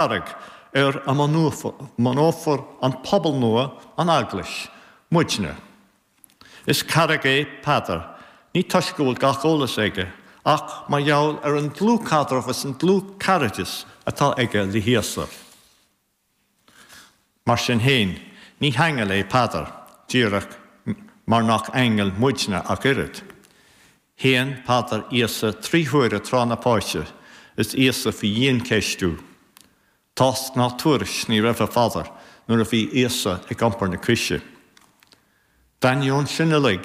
Charraig ar a mbunófar an pobal nua, an Eaglais, muidne. Is carraig é Peadar, ní toisc go bhfuil gach eolas aige, ach mar gheall ar an dlúthchaidreamh is an dlúthchairdeas atá aige le hÍosa. Mar sin fhéin, ní haingeal é Peadar, díreach mar nach aingil muidne ach oiread. Shéan Peadar Íosa trí huaire tráth na páise is Íosa faoi dhiancheistiú. Tásc ná tuairisc ní raibh ar Pheadar nuair a bhí Íosa ag iompar na croise. D'ainneoin sin uilig,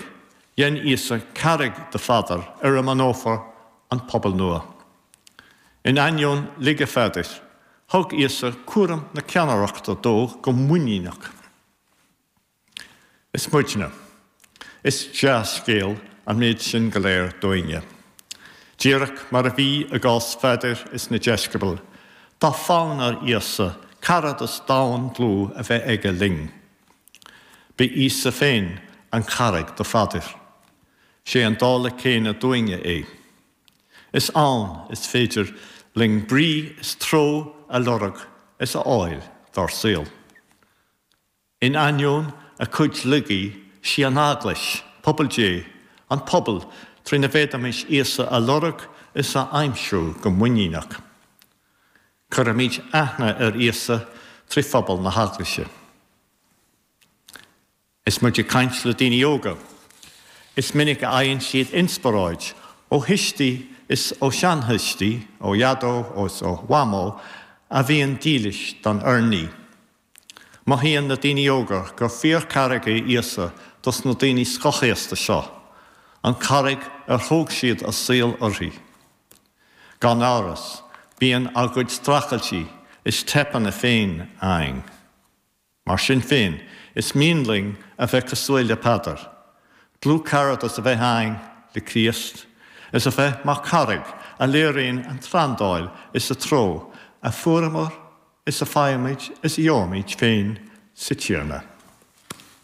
dhein Íosa carraig de Pheadar ar a mbunófar an pobal nua. In ainneoin laige Pheadair, thug Íosa cúram na ceannaireachta dó go muiníneach. Is muidne. Is dea-scéal an méid sin go léir dúinne. Díreach mar a bhí i gcás Pheadair is na deisceabail, tá fonn ar Íosa caradas domhain dlúth a bheith aige linn. B'é Íosa féin an carraig do Pheadair. 'Sé an dála céanna dúinne é. Is ann is féidir linn brí is treo a lorg is a fháil dár saol. In ainneoin a cuid laigí, 'sí an Eaglais, pobal Dé, an pobal trína bhféadfaimis Íosa a lorg is a aimsiú go muiníneach. Cuirfimid aithne ar Íosa trí phobal na hEaglaise. Is muid ag caint le daoine óga, is minic a fhaigheann siad inspioráid ó thuistí is ó sheanthuistí, ó Dhaideo is ó Mhamó a bhíonn dílis don urnaí. Mothaíonn na daoine óga gur fíorcharraig é Íosa dos na daoine scothaosta seo, an carraig ar thóg siad a saol uirthi. Gan amhras, bíonn ár gcuid streachailtí is teipeanna féin againn. Mar sin féin, is mian linn a bheith cosúil le Peadar, dlúthcaradas a bheith againn le Críost, is a bheith mar charraig a léiríonn an treoráil is a treo a fuaireamar is a faighimid is a gheobhaimid féin sa Tiarna.